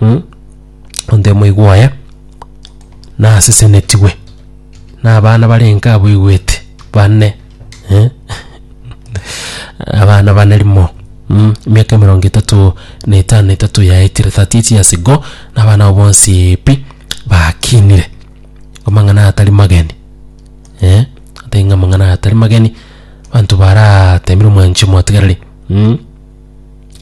mm, onto omoigwa oye nasesenetigwe na abana bare enka abaigwete bane eh? abana bane rimo mm, emiaka emerongo etato na etano na etato yaetire 38 years ago na abana abo bonsi pi bakinire amang'ana aya atari mageni eh? atari ng'a amang'ana aya atari mageni banto baratemire omwanchi omotigareri mm?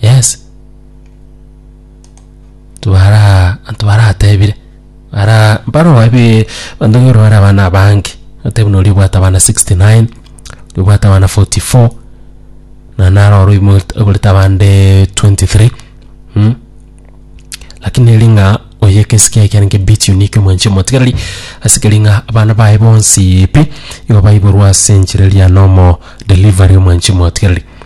yes twara twaratebire ara baro ebe bandu ngoro bara abana abange otebi nori obwate abana 69 obwate abana 44 na naro oro imo ogorete abande 23 mm lakini eri ng'a oyo egesike eke nege bit unique omwanchi omotigereri ase keri ng'a abana baye bonsi pi igo baiborwa ase enchera eria nomo delivery omwanchi omotigereri.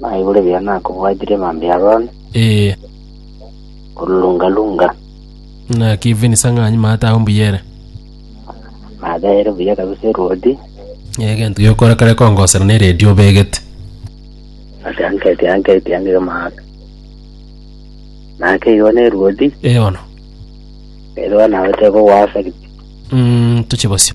Naigure ebiya nakobwatire mambia Haroni, Ee, korurunga-runga, ng'aki even sang'anyi maate agwo mbuya ere. maate ere buya kabisa erwoti, Egento giokora kare kongosera ne radio obegete. ase anketi anketi angige maate. Nake igo nerwoti, Eono. erio nagote kogwasa ki- Mm, toche bosio.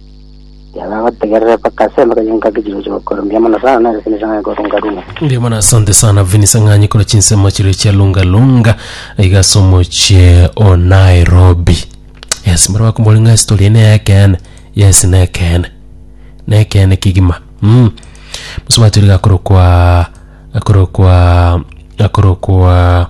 Yaba gotegerera mpaka ase embaga y'enka kichiroche gokora. Mbuya mono sana nere Vincent Ng'anyi korwa Lungalunga. Mbuya mono asante sana Vincent Ng'anyi korwa chinsemo chiria chia Lunga Lunga iga ase omochie o Nairobi. Yes, mbare bakomori ng'a story ene y'ekeene. Yes, nekeene. Nekeene kegima. Mm. Mosubati oria gakorokwa gakorokwa gakorokwa